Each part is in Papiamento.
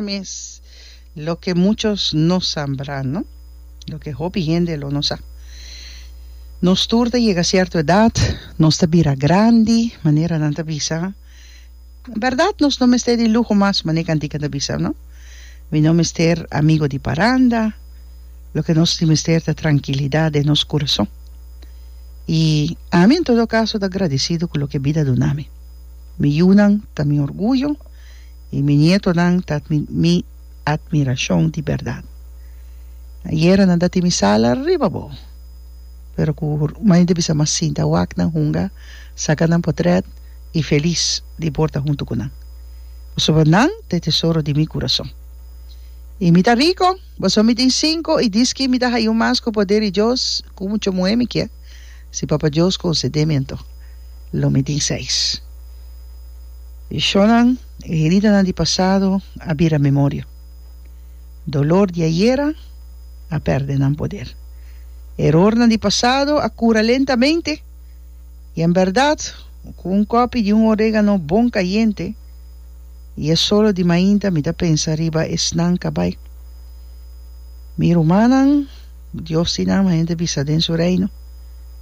mes loke muchos no sa nbra no loke hopi hende lo no sa nos tur ta yega cierto edad nos ta bira grandi manera nan ta bisa verdad nos no mester di luho mas manera e cantica ta bisa no mi no mester amigo di paranda loke nos tin mester ta trankilidad den nos kurason y ami en todo caso ta gradisido cu loke bida dunami. Mi yunan ta mi orguyo i mi nietonan ta mi atmirashon di bèrdat. Na yera nan ta tin mi sala riba bo, pero ku maña di bisa mas sinta wak nan hunga saka nan potrèt i felis di borda huntu ku nan, pasobra nan ta e tesoro di mi kurason. I mi ta riko, pasobra mi tin sinku i diski mi ta haya un mas ku poder di Dios ku muchu muhé mi kier. Si Papa Dios concedé mi anto lo mi tin seis Shonnan e heridanan di pasado a bira memoria Dolor di ayera a perde nan poder Erornan di pasado a cura lentamente Y en berdad cu un copi di un oregano bon cayente Y e solo di mainta mi ta pensa riba esnan cabai Mi rumannan Dios tin alma hende bisa den su reino,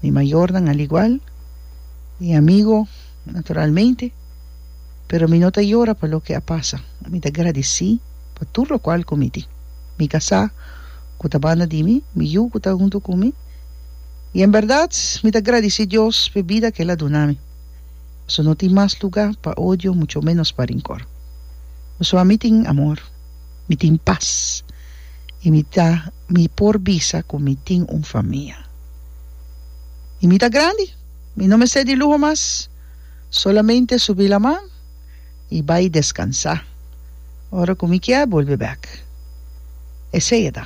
mi mayornan aligual, mi amigo naturalmente, pero mi no ta yora pa loke a pasa, mi ta gradici pa tur locual cu mi tin, mi casá cu ta banda di mi, mi yu cu ta hunto cu mi, y en berdad mi ta gradici Dios p'e bida cu el a duna mi, pasobra no tin mas lugar pa odio, mucho menos pa rincor, pasobra mi tin amor. mi tin pas i mi ta mi por bisa ku mi tin un famia. I mi ta grandi, mi no mester di luho mas, solamente subi laman i bai deskansá ora ku mi kier bolbe bèk. Esei a ta.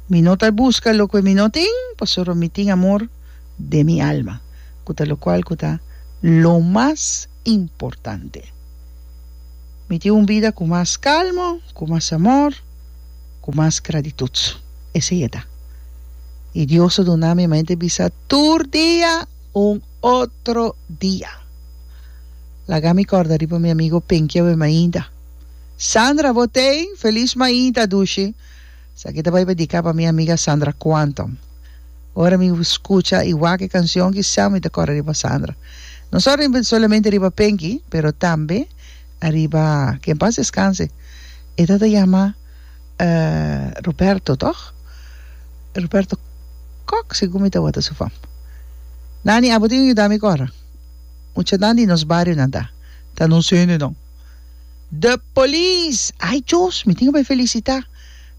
Mi no ta buska loke mi no tin, pasobra mi tin amor den mi alma, ku ta lokual ku ta lo mas. importante. Mi tin un bida ku mas kalmo, ku mas amor, ku mas gratitut. Esei e ta. I Dios a duna mi mente bisa tur dia un otro dia. Laga mi kòrda riba mi amigo Pinky a bai mainta. Sandra, bo ten? Feliz mainta, dushi. Esaki ta bai dedica pa mi amiga Sandra Quantum. Ora mi scucha y wak e cancion ki sa mi ta core riba Sandra. No solamente riba Penki pero tambe ariba ke en paz descanse e ta ta yama Roberto toch? Roberto Kok segun mi tawata su fam. Nan di abo tin yuda mi core. Mucha nan di nos bario nan ta ta nos hendenan. The police! Ay Dios! Mi tin ke bai felicita.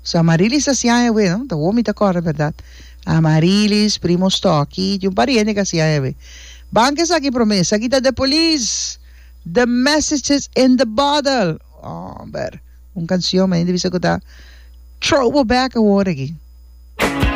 So Amarilis ta siña hewe, no? Ta wou mi ta kòrre, bèrdat? Amarilis, primo Stòki, i un par di hende ku a siña hewe. Ban ku esaki promé. Esaki ta The Police! The message is in the bottle! Hòmber, un kansion, mi a hende bisa ku ta throw bo bèk awor aki.